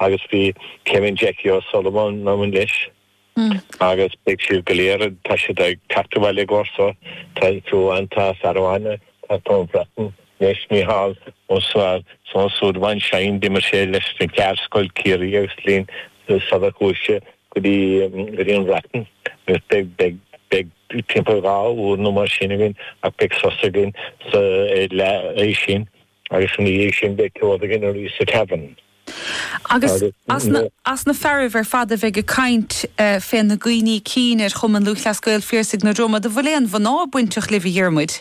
Agus bhí Céimin Jackie O'Sullivan ann leis agus beidh siad go léir, tá siad ag teacht abhaile i gcomhair seo, tá Joan, tá fear amháin, ag teacht ón mBreatain leis, Micheál Ó Súilleabháin Seáin, d'imir sé leis na Ceardscoil, Ciarraí agus linn sular chuaigh sé go dtí go dtí an Bhreatain. Agus beidh, beidh, beidh timpeall dhá uair nó mar sin againn ach beidh sos againn sa, ar leath a sé. Agus ina dhiaidh sin beidh ceol againn arís sa Tavern. Agus as na fearaibh ar fad a bheidh ag caint féna gcuimhní cinn ar Chumann Lúthchleas Gael, Phiarsaigh na Dromoda, bhfuil aon mhná bainteach libh, a Dhiarmuid?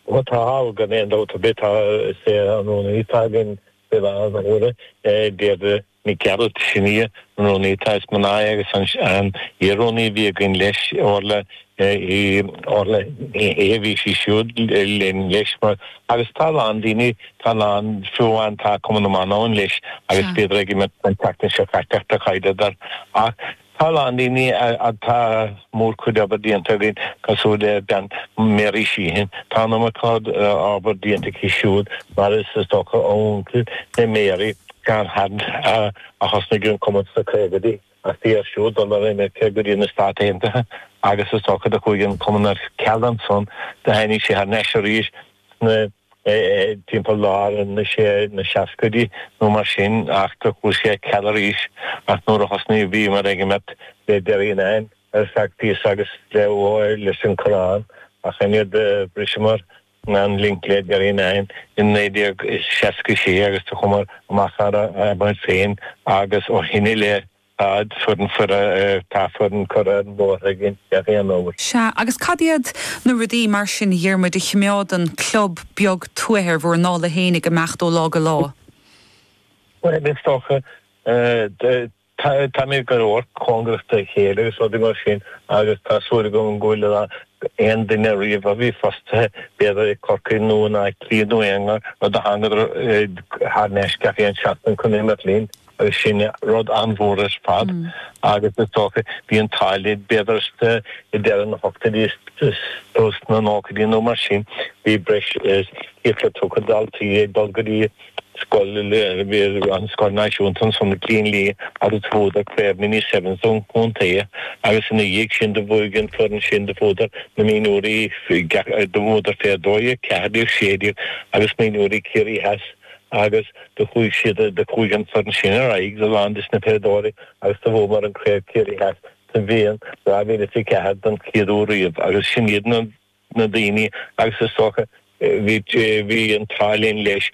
Bhuel, tá, tá, gan aon dabht ar bith. Tá, is é, an rúnaí againn fé láthair, a Mháire, Deirdre, Nic Gearailt sin í an rúnaí atá is mná agus an iar-rúnaí a bhí againn leis, Orla, í, Orla, í a bhí sí siúd linn leis mar, agus tá a lán daoine, tá a lán fiú amháin, tá Cumann na mBan ann leis agus bhíodar ag imirt an tseachtain seo caite ach tá caidé d'fhear ach, Tá a lán daoine atá mórchuid obair déanta againn, cosúil le bean Mary Sheehan. Tá an iomarca obair déanta aici siúd, mar is is dócha a uncail le Mary, John Hunt, a a thosnaigh an cumann sna caogaidí. Ach bhí air siúd dul ar imirce go dtí na Stáit Aontaithe agus is dócha do chuaigh an cumann ar ceal ansan do tháinig sé thar n-ais arís. sna, timpeall lár na, sé, na seascaidí nó mar sin, ach do chuaigh sé ar ceal arís, ach nuair a thosnaigh, bhíomar ag imirt le Derrynane ar feadh píosa agus le, ó, leis an Coireán, ach an fhaid a bhriseamar an link le Derrynane in naoi déag seasca sé agus do chuamar amach thar ár bport féin agus ó shin i leith, Tá foireann fear, tá foireann curtha amach againn gach aon uair. Sea, agus cad iad na rudaí mar sin, a Dhiarmuid, a chimeádann club beag tuaithe ar bhur ndála féin ag imeacht ó lá go lá? Bhuel, is dócha, táimid go leor cóngarach dá chéile agus rudaí mar sin agus tá súil agam go bhfuil a dhath d'aon duine riamh a bhí fostaithe, b'fhéidir i gCorcaigh nó in Áth Cliath nó aon áit, nó do thángadar thar n-ais gach aon seachtain chun imirt linn. Agus sin rud an-mhór ar fad, agus is dócha, bhí an t-ádh linn b'fhéidir sna, i deireadh na hochtóidí nó sna nóchaidí nó mar sin, bhí breis is céad tríocha daltaí ag dul go dtí scoil, an scoil náisiúnta ansan, i gCillín Liath, agus do bhuadar craobh mini sevens an chontae, agus ina dhiaidh sin do bhuaigh an foireann sin, do bhuadar na mionúirí, do bhuadar fé 12, 14, 16 agus mionúirí Ciarraí Theas. Agus do chuaidh siad, do chuaidh an foireann sin ar aghaidh a lán des na peileadóirí agus do bhuamar an Craobh Chiarraí Theas sa mbliain 2004 don chéad uair riamh agus sin iad na na daoine agus is dócha bhí, bhí an t-ádh linn leis,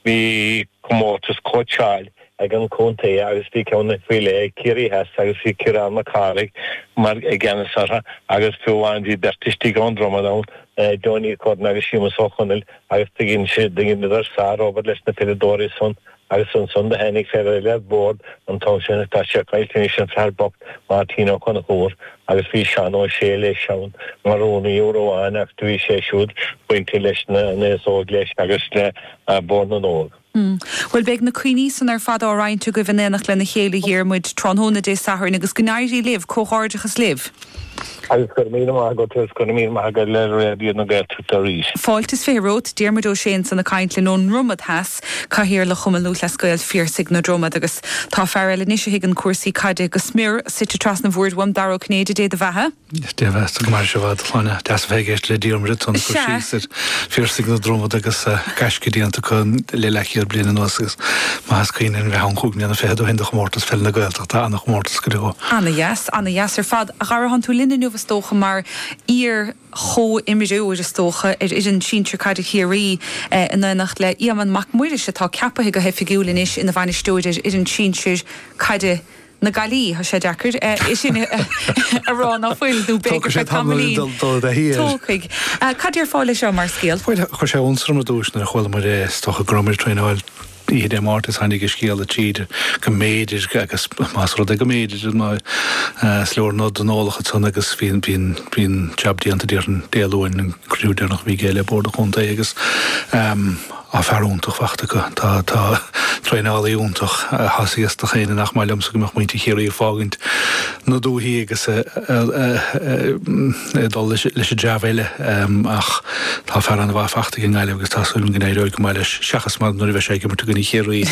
bhí comórtas cóitseáil ag an contae agus bhí ceann faoi leith ag Ciarraí Theas agus bhí Ciarán Mac Cárthaigh mar i gceannas orthu agus fiú amháin bhí beirt istigh ón Dromad ann, Johnny Curran agus Séamus Ó Conaill agus do dheineadar sárobair leis na peileadóirí san agus ansan do tháinig fear eile ar bord an t-am san atá sé caillte anois, an fear bocht Máirtín Ó Conchúir agus bhí Seán Ó Sé leis ann mar rúnaí uair amháin ach do bhí sé siúd bainte leis an aos óg leis agus le Bord na nÓg. Hm. Bhuel, beidh na cuimhní san ar fad á roinnt agaibh in éineacht lena chéile, a Dhiarmuid, tráthnóna Dé Sathairn, agus go n-éirí libh, comhghairdeachas libh! Agus go raibh míle maith agat, agus go raibh míle maith agat le Raidió na Gaeltachta arís. Fáilte is fiche romhat, Diarmuid Ó Sé ansan ag caint linn ón nDromad Theas, Cathaoirleach Chumann Lúthchleas Gael Phiarsaigh na Dromad, agus tá fear eile anois a thuigeann cúrsaí caide go smior, suite trasna an bhoird uaim, Dara Ó Cinnéide, Dé do bheatha. Dé bheathasa, go mairirse i bhfad, a Shláine. Deas a bheith ag éisteacht le Diarmuid ansan ag cur síos ar Phiarsaigh na Dromad agus gaisce déanta acu le leathchéad bliain anuas agus maith is cuimhin liom a bheith ann cúig mbliana fichead ó shin do Chomórtas Pheil na Gaeltachta, ana-chomórtas go deo. Ana-dheas, ana-dheas ar fad. A Dhara, tánn tú linn inniu is dócha mar iar-chomhimreoir is dócha ar fhoireann sinsir caide Chiarraí in éineacht le Éamonn Mac Muiris atá ceapaithe go hoifigiúil anois ina bhainisteoir ar fhoireann sinsir caide na Gaillimhe. Tá sé deacair é sin a rá ná fuil, nó b'fhéidir Tógfaidh sé feadh tamall tamaillín. dul dul i dtaithí air. Tógfaidh. Cad déarfá leis seo mar scéal? Bhuel, chuir sé iontas orm ar dtús nuair a chuala muid é, is dócha go raibh muid ag traenáil oíche Dé Máirt is tháinig an scéala tríd go mb'fhéidir agus más rud é go mb'fhéidir is leor nod don eolach ansan agus bhí an bhí an jab déanta déarfainn Dé Luain an cruinniú deireanach a bhí aige le Bord an Chontae agus Tá fear iontach fachta acu. Tá traenálaí iontach. Thosaigh is dócha ainneoin nach maith liomsa go mbeadh muintir Chiarraí ag fágaint na dúthaí agus ag dul leis an dream eile ach tá fear ana-mhaith fachta ag an nGaillimh agus tá súil agam go n-éireoidh go maith leis seachas nuair a bheidh sé ag imirt i gcoinne Chiarraí.